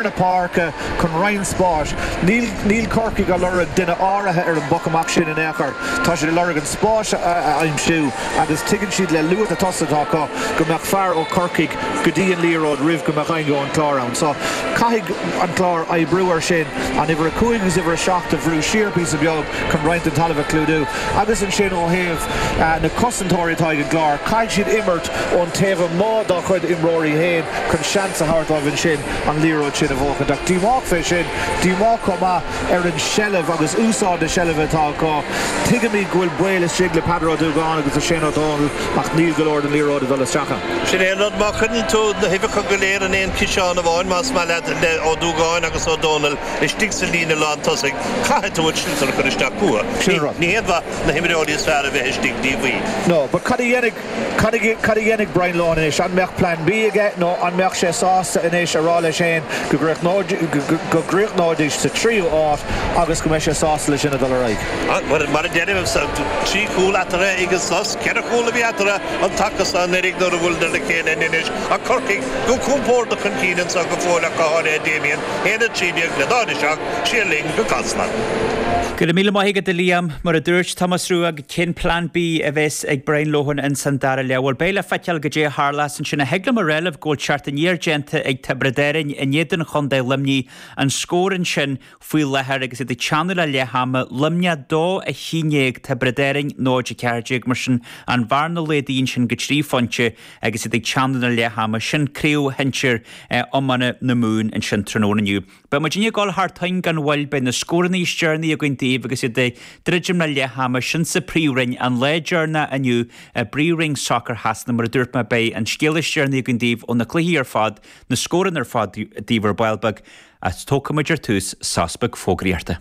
na páirce chun roinnt spáis. Níl níl Corcaigh ag lorg duine áirithe ar an bpoc amach sin in aon chor. Tá siad ag lorg an spás a aimsiú agus tuigeann siad le luas na tosaithe atá acu go mbeadh fear ó Corcaigh go dtí an liathróid roimh go mbeadh éinne ón Chlár ann. So caithfidh an Clár oibriú air sin an uimhir a cúig agus uimhir a seacht a bhrú siar píosa beag chun roinnt den talamh a chlúdú agus ansin ó thaobh na cosantóirí atá ag an gClár caithfidh siad imirt ón taobh amuigh dá chuid imreoirí féin chun seans a thabhairt dóibh ansin an liathróid sin a bhuachaint. Ach díomách fé sin, díomách chomh maith ar an seilbh agus úsáid na seilbhe atá acu. Tuigimíd go bhfuil baol istigh le Peadar Ó Dúgáin agus le Shane Ó Dónaill ach níl go leor den liathróid ag dul isteach ann. Sin é an rud, má chuireann tú na huibheacha go léir in aon chiseán amháin, más maith leat, le Ó Dúgáin agus Ó Dónaill istigh sa líne lán tosaigh, caithfidh tú an sliotar a chur isteach chucu. Ní haon mhaith na himreoirí is fearr a bheith istigh, Dia Dhaoibh. Nó, ba, cad a dhéanfaidh. Cad a dhéanfaidh Brian Lohan anois? An mbeadh Plean B aige nó an mbeadh sé sásta anois a rá leis féin go gcríochnóidís sa tríú háit agus go mbeidh sé sásta leis sin a dhul ar aghaidh? Bhuel, mar a deirim, trí chúl eatarthu ag an sos, ceithre chúl a bhí eatarthu an taca so anuiridh nuair a bhuaileadar le chéile in Inis, ach Corcaigh go compórdach chun cinn anso go fóill ach go háirithe Damien, 1-13 le 0-7, siar linn go Casla. Go raibh míle maith agat, a Liam. Mar a dúirt Tomás Rua. Cén Plean B a bhéas ag Brian Lohan ins an dara leath? Bhuel, beidh le feiceáil goidé a tharlás ansin. Ach thig liom a rá libh go bhfuil teacht aniar déanta ag Tiobraid Árainn in éadan Chontae Luimnigh an scór ansin faoi láthair agus iad ag teannadh le leath ama, Luimneah 2 11 Tiobraid Árainn 0 14. Mar sin, an bhearna laghdaithe ansin go trí phointe agus iad ag teannadh le leath ama. Sin Craobh Shinsir Iomána na Mumhan ansin tráthnóna inniu. Beidh muidinne ag gabháil thar toinn gan mhoill, beidh na scóranna is deireanaí againn daoibh agus iad ag druidim le leath ama, sin sa Phríomhroinn. An lá deireanach inniu i bPríomhroinn Sacair Shasana, mar a dúirt mé, beidh an scéala is deireanaí againn daoibh ó na cluichí ar fad, na scóranna ar fad daoibh ar ball beag. Tógfaimid ar tús sos beag fógraíochta.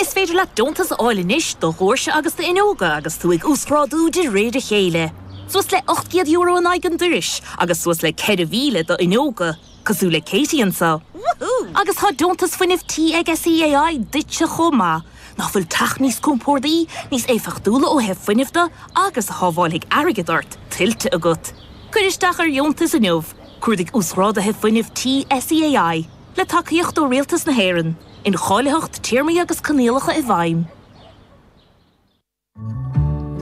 Is féidir leat deontas a fháil anois do dhoirse agus d'fhuinneoga agus tú ag uasghrádú de réir a chéile. Suas le €800 in aghaidh an dorais agus suas le 4,000 d'fhuinneoga, cosúil le Katie anseo. Agus tá deontas fuinnimh tí ag SEAI duitse chomh maith. Nach bhfuil teach níos compordaí, níos éifeachtúla ó thaobh fuinnimh de agus a shábháilfidh airgead ort, tuillte agat? Cuir isteach ar dheontas inniu. Cuardaigh Uasghráduithe Fuinnimh Tí SEAI, le tacaíocht ó Rialtas na hÉireann. Incháilitheacht, Téarmaí agus Coinníollacha i bhfeidhm.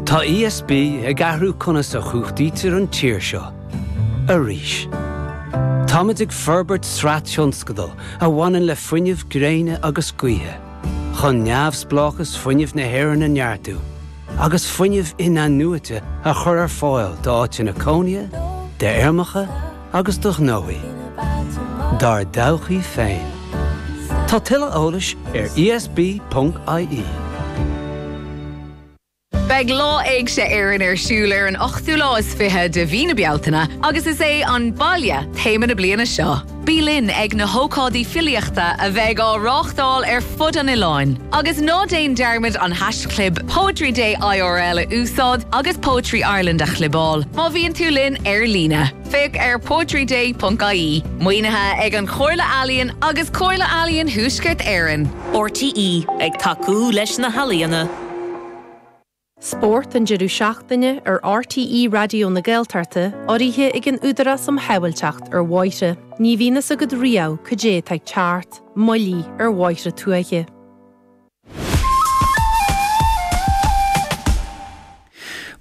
Tá ESB ag athrú conas a chumhachtaítear an tír seo arís. Táimid ag forbairt sraith tionscadal a bhaineann le fuinneamh gréine agus gaoithe, chun neamhspleáchas fuinnimh na hÉireann a neartú agus fuinneamh inathnuaite a chur ar fáil d'áiteanna cónaithe, d'fheirmeacha, agus do ghnóthaí, dár dtodhchaí féin. Tá tuilleadh eolais ar ESB ponc IE. Beidh Lá Éigse Éireann ar siúl ar an ochtú lá is fiche de mhí na Bealtaine agus is é 'An Baile' téama na bliana seo. Bí linn ag na hócáidí filíochta a bheidh á reáchtáil ar fud an oileáin. Agus ná déan dearmad an haischlib Poetry Day IRL a úsáid agus Poetry Ireland a chlibeáil má bhíonn tú linn ar líne. Féach ar poetryday.ie. Maoinithe ag An Chomhairle Ealaíon agus Comhairle Ealaíon Thuaisceart Éireann. RTÉ, ag tacú leis na healaíona. Spórt an deireadh seachtaine ar RTÉ Raidió na Gaeltachta, urraithe ag an Údarás um Shábhailteacht ar Bhóithre. Ní bhíonn fhios agat riamh cad é atá ag teacht, moilligh ar bhóithre tuaithe.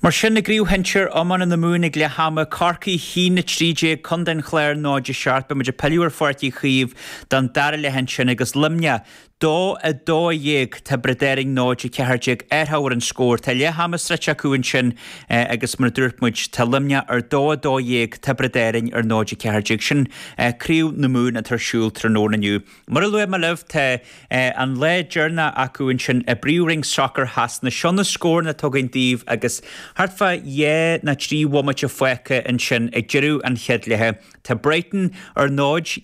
Mar sin, i gCraobh Shinsir iomána na Mumhan ag leath ama, Corcaigh a haon 13, Contae an Chláir 0-7. Beidh muid ag pilleadh ar Pháirc Uí Chaoimh don dara leath ansin agus Luimneach 2:12, Tiobraid Árann 0 14 ar thábhairne an scóir. Tá leath ama sroichte acu ansin agus mar a dúirt muid tá Luimneach ar 2:12, Tiobraid Árann ar 0 14. Sin Craobh na Mumhan atá ar siúl tráthnóna inniu. Mar a luaigh mé libh tá an lá deireanach acu ansin i bPríomhroinn sacair Shasana. Seo na scóranna anois tugaim daoibh agus thart fá dhá ná trí bhomaite fágtha ansin ag deireadh an chéad leithe. Tá Brighton ar 0.